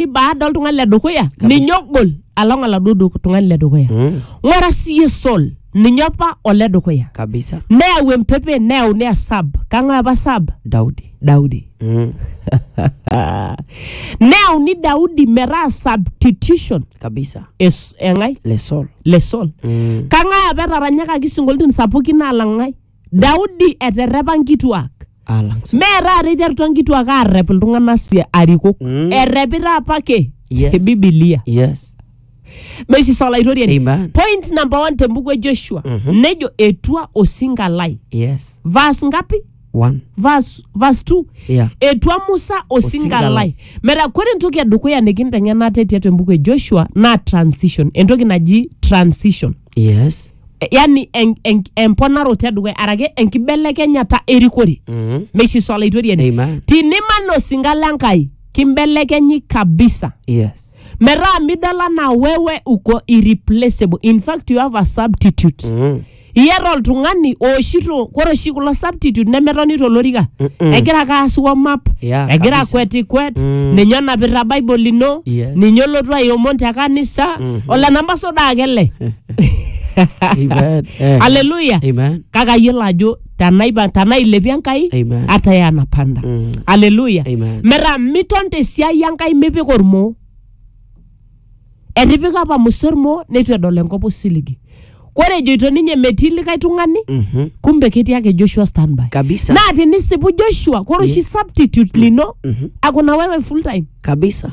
ni baada oltung'ani le dukuya ninye ogol along oladuo du- tung'ani le dukuya Mm. ng'ura siye sol ninye apa ole dukuya kabisa neyau empepe neyauni esab kang'ae apa sab daudi daudi mm. neyauni daudi metaa substitution kabisa es- eng'ae lesol le sol mm. kang'ae apa etaranyakaki sinkoliotin sapukin alang'ae Daudi eterrepa nkituak. alang si- Mee taata eiterutua nkituak aarrep iltung'anak si arikok. Mm. Errepita apake Yes. te Bibilia. yes Mesis olaitoriani. Amen. Point number one te mbuku e Joshua. Nejo etua osinka lai. yes Verse ngapi? one Verse, verse two. yeah etua musa osinka Osinka lai lai. metaa kore entoki edukuya nikinteng'enate tiatua embuku e joshua naa transition entoki naji transition yes E- yani en- en- emponaroto edukuya arake enkibelekenyata erikore mm. meishiso olaitoriani Amen. tiniman osinka le nkai kimbelekenyi kabisa yes metaa midol anaa wewe uko irreplaceable in fact you have a substitute mm. iyata oltung'ani ooshito kore oshi kulo substitute nemetoni tolorika egira ake aas warm up Yeah, egira kabisa. akwetikwet ninye onapita bible ino Yes. ninye olotu aiomon te kanisa ole namba soda ake ele Amen. Eh. haleluya Amen. kake ayiolo ajo tanaipa tanailepie enkai Amen. ata ya napanda Mm. haleluya Amen. metaa miton tesiai enkai mipik ormoo etipika apa musa ormoo neitu edol enkop osiligi kore ejoito ninye metii likae tung'ani Mhm. kumbe ketii ake joshua standby Kabisa. naa tinisipu joshua kore oshi substitute lino akuna wewe full time Kabisa.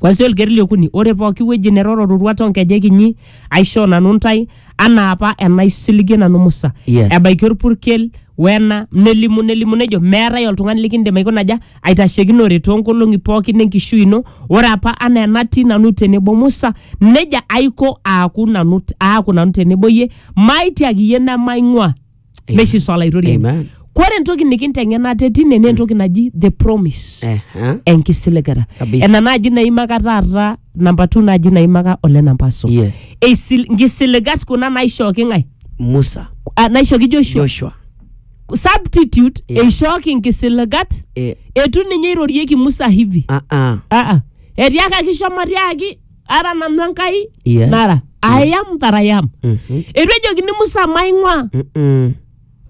kwanzia olkeri liokuni ore pooki wueji neroro roruat onkejek inyi aishoo nanu ntae anaa apa enaisiligie nanu musa Yes. ebaiki orpurkel wena nelimu nelimu nejo meetae oltung'ani likindim aikuna aja aitashekinore toonkolong'i pookin enkishui ino ore apa anaa enatii nanu tenebo musa nejia aiko aaku nanu aaku nanu tenebo iyie maitiaki iyie nemaing'ua meshi swala aitoriani Amen. kore entoki nikinteng'ena ate tine naa entoki naji the promise Eh, eh. enkisiligata Kabisa. ena naaji naimaka taata namba two naaji naimaka ole namba so Yes. Eisil- nkisiligat kuna naishooki ng'ae Musa, Ah, naishooki joshua Joshua. substitute Yeah. eishooki nkisiligat Eh, etu ninye eirorieki musa hivi ah, ah. aa etiakaki shomo tiaki ara nanu enkai Yes. nara I am that I am Mhm. etu ejokini musa maing'ua Mm-mm.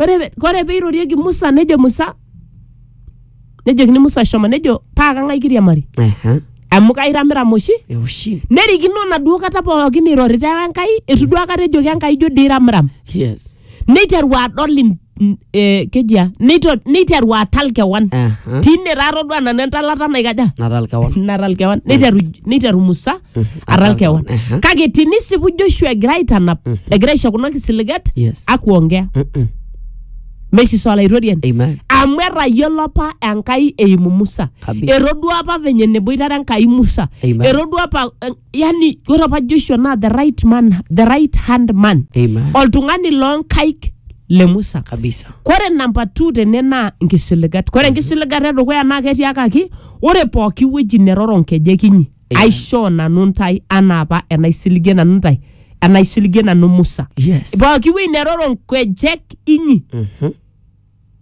ore pe- ore peirorieki musa nejo musa nejokini musa shomo nejo paa kang'ae kiriamari Aha. amu kairamiram oshi Eushi. nerikino naduo kata pookin irorita enkai etu duo akata ejoki enkai ijo dii iramiram Yes. neiteru adol in- n- eh, kejia neito- neiteru atal kewan Aha. tine taa todua nanu entalata naikaja natal kewan natal kewan neiteru neiteru musa atal atal kewan kewan, aha. kake tinisipu joshua egira aitanap egira aisho kuna kisiligat Yes. akuongea Mm-mm. mesiso olaitoriani amen amu etayiolo apa enkai eimu musa Kabisa. etodua apa venye neboitare enkai musa Amen. etodua apa eh, yani ore apa joshua naa the right man the right hand man Amen. oltung'ani loonkaik le musa kabisa kore namba two tene naa nkisiligat kore nkisiligata edukuya naa ketiakaki ore pooki wueji neroro nkejek inyi Amen. aishoo nanu ntae anaa apa enaisiligie nanu ntae enaisiligie nanu musa yes pooki wueji neroro nkejek inyi Mhm.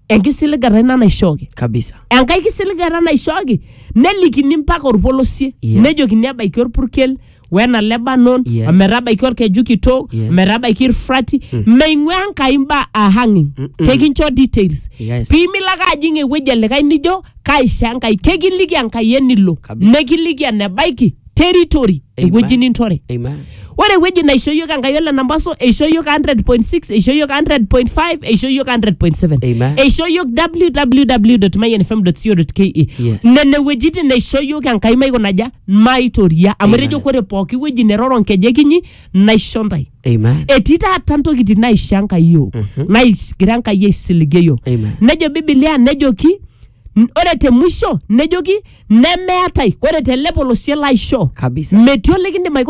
enkisiligata ina naishooki kabisa enkae kisiligata naishooki nelikini mpaka orpolosie Yes. nejokini ebaiki orpurkel wena lebanon Yes. ometabaiki orkeju kitok Yes. ometabaiki irfrati meing'ua enkai imbaa ahang'ing kekincho details Yes. piimilo ake ajing ewueji elikae nijo kaisho enkai kekiliki enkai enilo Kabisa. nekiliki enebaiki territory Amen. ewueji nintore Amen. ore ewueji naisho yiok enkai ole nambaso eisho yiok 100.6 eisho yiok 100.5 eisho yiok 100.7 Amen. eisho yiok www.mayanfm.co.ke Yes. nene wuejitin naisho yiok enkai maikonaja maitoria amu Amen. etejo kore pooki wueji neroro nkejek inyi naisho ntae Amen. etii taata ntokitin naisho enkai yiok naigira enkai aisiligie yiok Amen. nejo bibilia nejoki N- ore te musho nejoki nemeetae ore tele polosie laishoo Kabisa. metii olikindim aikuna